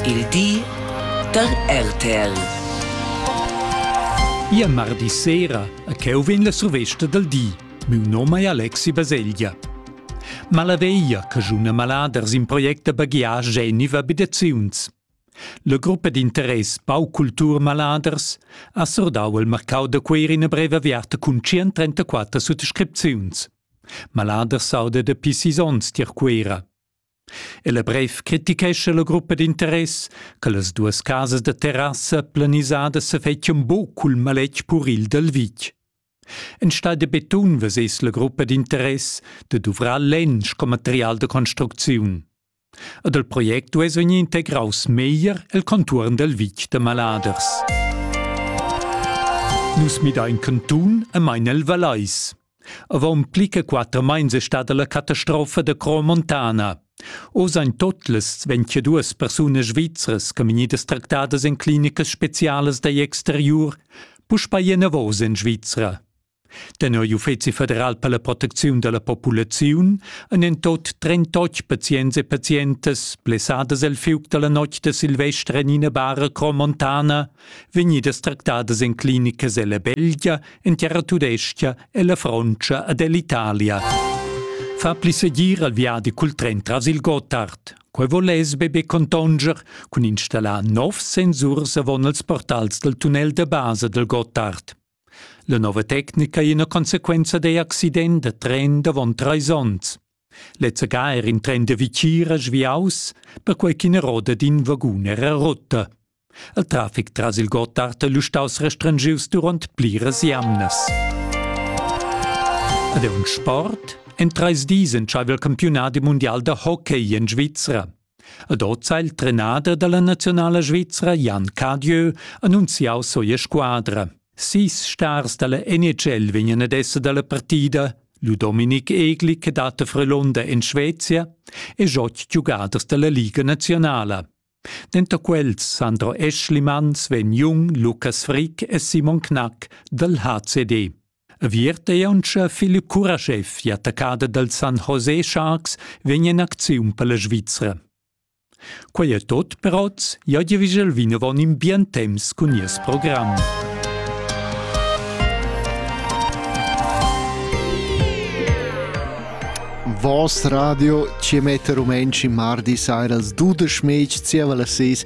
Il di da RTL. Ia mardi sera a cheu vegn la survesta dal di. Miu nom è Alexi Baselgia. Malaveia, che giuna maladers in project da baghiar geniva bidaziuns. La gruppa d'interess Pau Cultur Maladers ha sordau il marcau da queir ina breva aviarta cun 134 suttascripziuns. Maladers sauda da pi sis onns tier Cuera. El brev critichescha la gruppa d'interess che las duas casas da terrassa planisadas sa fettian buc cul maletg puril dal vitg. Enstagl da betun vesess la gruppa d'interess de duvrar lensch com material de construcziun. Ed il project duess vegnir integraus meglier el contuorn dal vitg da Maladers. Nus midain cantun e main el Valais. Avon pli che quater meins è stada la catastrofa da Cro Montana. Oz ein totlas 22 persunas svizras che vegnidas tractadas en clinicas specialas dagl exteriur puspei enavos en Svizra. Tenor l'Uffeci federal per la protecziun dalla populaziun ein en tot 38 pazients e pazientas blessadas el fiug dalla notg de Silvester en ina bara Cro Montana vegnidas tractadas en clinicas ella Belgia, en terra tudescha e la Frontscha ed ell'Italia. Fa pli segir al viadi cul tren tras il Gotthard. Quei voless be be contonger cun installar nov sensurs avon als portals del tunnel de base del Gotthard. La nova tecnica è ina consequenza da accident da tren davon treis onns. Lezza ga er in tren da Vitgira sviaus, perquei ch'ina roda d'in vagun era rota. Il trafic tras il Gotthard è lu staus restrengius duront pliras jamnas. Ed è un sport? En treis dis entscheiva il campiunat mundial da hockey en Svizra. Ed oz ha il trenader dalla naziunala svizra Jan Cadieu annunziau sia squadra. Sis stars dalla NHL vegnan ad esser dalla partida, lu Dominik Egli che dat a Frelunder en Svezia e oz giugaders dalla Liga nazionala. Denter quels Sandro Eschlimanns vegn jung Lukas Frick e Simon Knack dal HCD. Aviert ei auncha Philipp Kurashev i attaccada dal San José Sharks vegn in acziun per la Svizra. Quei è tot per oz, io di vigel vinavon in bien temps cun nies program. Voss radio ci mette rumenci mardi sera als 12 mec zieva las 6